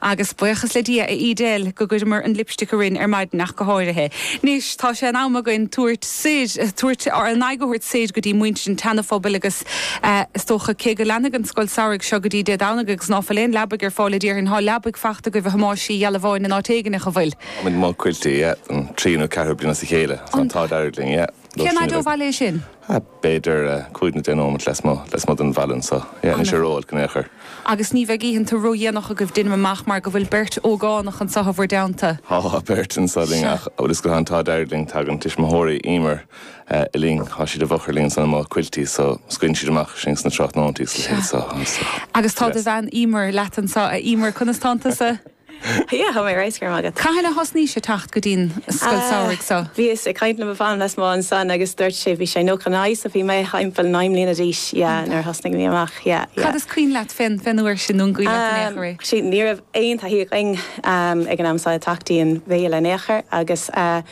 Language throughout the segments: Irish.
Agus buíochas le Dia, a Edel, go gcuireamar an lipstick araon ar maidin ach go háirithe. Anois tá sé in am againn tabhairt soir, tabhairt, ár n-aghaidh a thabhairt soir go dtí muintir an tSeanaphobail agus, eh, is dócha, cé go leanfaidh an scoil samhraidh seo go dtí Dé Domhnaigh agus ná fuil aon leabaidh ar fáil a déarfainn, thá leabaidh fachta agaibh, a Thomáis Uí Ghealbháin in áit éigin, nach bhfuil? Táimid amuigh i Quilty, yeah, don tríú nó ceathrú bliain as a chéile, tá an t-ádh dearg linn, yeah. Cén fhaid ó bhaile é sin? B'fhéidir cúig nó deich nóimeat lasmuigh den bhaile anseo. Yeah, níl sé ró-olc in aon chor. Agus ní bheidh oícheanta ró-dhéanach agaibh deinim amach mar go bhfuil beirt ógánach anseo i bhur dteannta? Tá beirt anseo linn ach a bhfuil 'fhios agat, tá an t-ádh dearg linn, tagann tuismitheoirí Emer linn, tá siad i bhfochair linn anseo amuigh i Quilty so scaoileann siad amach sinn sna tráthnóintí is a leithéid so. Agus tá do bhean Emer leat anseo. A Emer, conas tánn tusa? Yeah, tá mé ar fheabhas go raibh maith agat. Cathain a thosnaís ag teacht go dtí'n scoil samhraidh so? Bhíos ag caint le mo mham lasmuigh ansan agus dúirt sé, bhí sé nócha a naoi, so bhí mé thimpeall naoi mbliana d'aois, yeah, nuair a thosnaigh mé amach, yeah, yeah. Cad is cuimhin leat fén, fén uair sin, nó an gcuimhin leat in aon chor é? Sea, ní raibh aon taithí againn ag an am so ag teacht dtí'n bhaile in aon chor agus eh,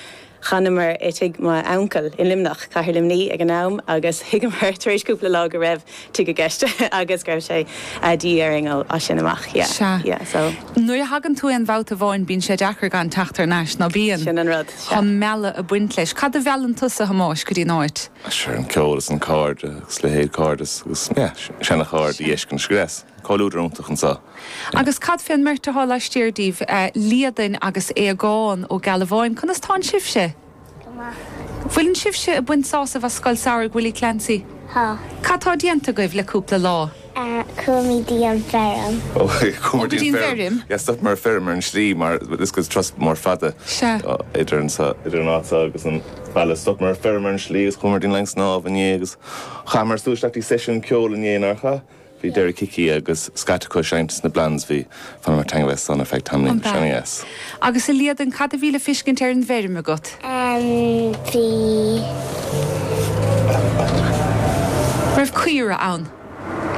D'fhanamar i tigh m'uncail i Luimneach, Cathair Luimní ag an am, agus thuigeamar tar éis cúpla lá go raibh tigh i gceist agus go raibh sé de dhíth orainn as sin amach. Sea. Nuair a thagann tú aon bhabhta amháin bíonn sé deacair gan teacht thar n-ais, ná bíonn? Sin an rud. Sea. Chun mealladh ag baint leis. Cad a mheallann tusa, a Thomáis, go dtí an áit? Sea, an ceol is na cairde, agus leithéid cairdeas agus, yeah, seanchairde, a fheiscint agus. Comhluadar iontach anseo. Agus cad fé an mbeirt athá laistiar díbh, Liadain agus Aodhagán Ó Gealbháin, conas tánn sibhse? Go maith. Bhfuileann sibhse ag baint sásaimh as Scoil Samhraidh Willie Clancy? Tá. Cad tá déanta agaibh le cúpla lá? Chuamid dtí an feirm. Ó, chuamar dtí an feirm. Yes, stopamar ag feirm ar an slí mar is turas mór fada idir anseo, idir an áit seo agus an baile. Stopamar ag feirm ar an slí agus chuamar dtí an linn snámh inné agus chaitheamar súil isteach dtí seisiún ceol inné, nár chaith? Bhí Derek Hickey agus scata acu ag seinnt sna Blondes. Bhí d'fhanamar ina dteannta san ar feadh tamaill. An bhfeadh? Yes. Agus a Liadain, cad a bhí le fiscint ar an bhfeirm agat? An bhí? Raibh caora ann?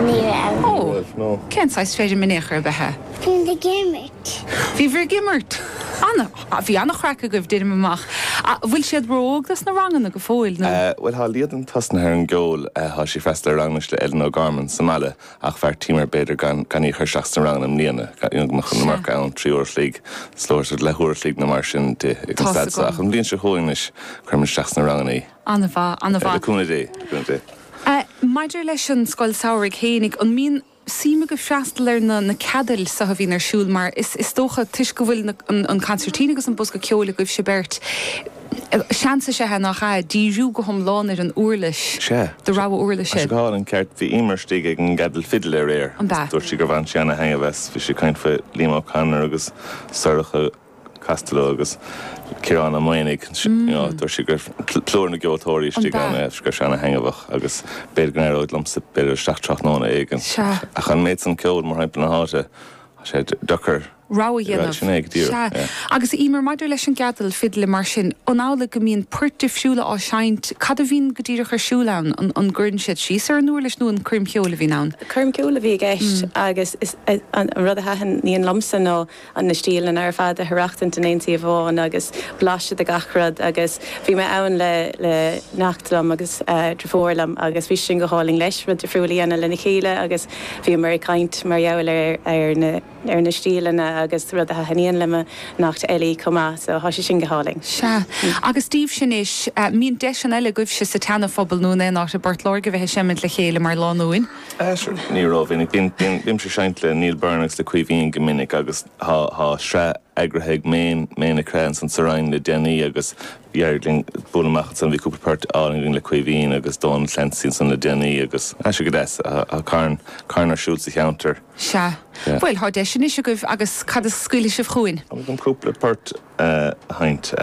Ní raibh. Ní Oh. raibh, no. Cén saghas feirm in aon chor ab ea í? Bhíomar ag imirt. Bhíobhair ag imirt. An. Bhí an-chraic agaibh, deinim amach. An bhfuil siad ró-óg dos na ranganna go fóill, nó? Bhuel, tá Liadain tosnaithe ar an gceol. Tá sí ag freastal ar ranganna le Eileen O'Gorman sa mbaile, ach bheartaíomar b'fhéidir gan gan í a chur isteach sna ranganna i mbliana, gan gan go mbeadh an iomarca ann. Sea, trí uair a chloig, is leor sórt leathuair a chloig nó mar sin di ag an staid seo. Tá's agam. Ach an bhliain seo chugainn anois, cuirfimid isteach sna ranganna í. An-mhaith, an-mhaith. Le cúnamh Dé, le cúnamh Dé. Eh, maidir leis an scoil samhraidh fhéinig, an mbíonn. Suim agaibh freastal ar na na ceadail so a bhíonn ar siúl mar is is dócha toisc go bhfuil na an consairtín agus an bosca ceoil agaibhse beirt seans is ea nach ea díriú go hiomlán ar an uirlis Sea. do rogha uirlis Is ea. go hálainn ceart bhí Eimear istigh ag an gceadal fidil aréir An b'ea? agus dúirt sí gur bhain sí ana-thaitneamh as bhí sí ag caint faoi Liam O'Connor agus Sorcha Costello agus Ciarán Ó Maonaigh, dúirt sí go raibh plúr na gceoltóirí istigh ann, go raibh sé an-thaitneamhach agus b'fhéidir go n-éireoidh liomsa bualadh isteach tráthnóna éigin. Ach an méid san ceoil, mórthimpeall na háite, tá sé deacair rogha a dhéanamh. Sin é go díreach, yeah. Agus Eimear, maidir leis an gceadal fidle mar sin, an amhlaidh go mbíonn poirt difriúla á seinnt, cad a bhíonn go díreach ar siúl ann, an gcuireann siad síos ar an uirlis nó an coirm cheoil a bhíonn ann? Coirm cheoil a bhí i gceist agus an rud a thaitníonn liomsa ná. an na stíleanna ar fad a dh'aireachtaint in aon suíomh amháin agus blaiseadh de gach rud agus bhí mé ann le le neacht liom agus driofúr liom agus bhí sé sin go hálainn leis rud difriúil a dhéanamh lena chéile agus bhíomar ag caint mar gheall ar ar na ar na stíleanna agus rud a thaithníonn le mo neacht Ellie chomh maith so thá sé sin go hálainn. Sea. Agus daoibhse anois, an mbíonn deiseanna eile agaibhse sa tSeana-Phobal nó in aon áit i bPort Láirge bheith ag seimint le chéile mar lánúin. Ní rómhinic. Bímse ag seinnt le Neil Byrne agus le Caoimhín go minic agus thá sraith eagraithe ag Méin, Méin Nic Craith ansan sa Rinn le déanaí agus d'éirigh linn bualadh amach ansan. Bhí cúpla port álainn againn le Caoimhín agus Dónal Clancy ansan le déanaí agus thá sé go deas. Thá carn, carn ar siúl sa cheantar. Sea. Bhuel, thá deis anois agaibh agus cad a scaoilfidh sibh chugainn? Cúpla port. a sheinnt.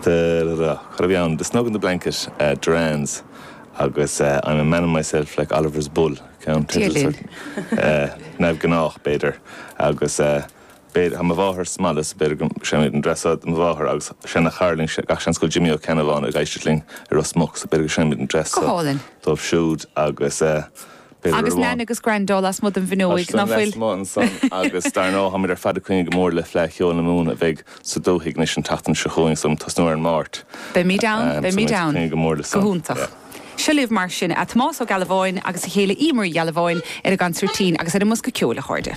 Cad a bheidh ann? The Snug in the Blanket, Duran's, agus I'm a Man in Myself like Oliver's Bull, ceannteideal sórt neamhghnách, b'fhéidir, agus tá mo mháthair sa mbaile, so b'fhéidir go seinnfimid an dreas seo do mo mháthair agus seanachara linn, gach seans go bhfuil Jimmy Ó Ceannabháin ag éisteacht linn i Ros Muc, so b'fhéidir go seinnfimid an dreas seo dóibh siúd agus. Bhí Agus Nan agus Grando lasmuigh den Tá bhfuinneoig, ná siad fuil? lasmuigh ansan agus dar ndóigh táimid ar fad ag coinne go mór le Fleadh Cheoil na Mumhan a bheidh sa dúthaigh anois an tseachtain seo chugainn, so ag tosnú ar an Máirt. Beimid ann, Ahm, so beimid muid ag ann. coinne go mór le Go san. hiontach. Yeah. Seo libh mar sin, Tomás Ó Gealbháin agus a chéile Eimear Uí Ghealbháin ar an gconsairtín agus ar an mbosca ceoil, a chairde.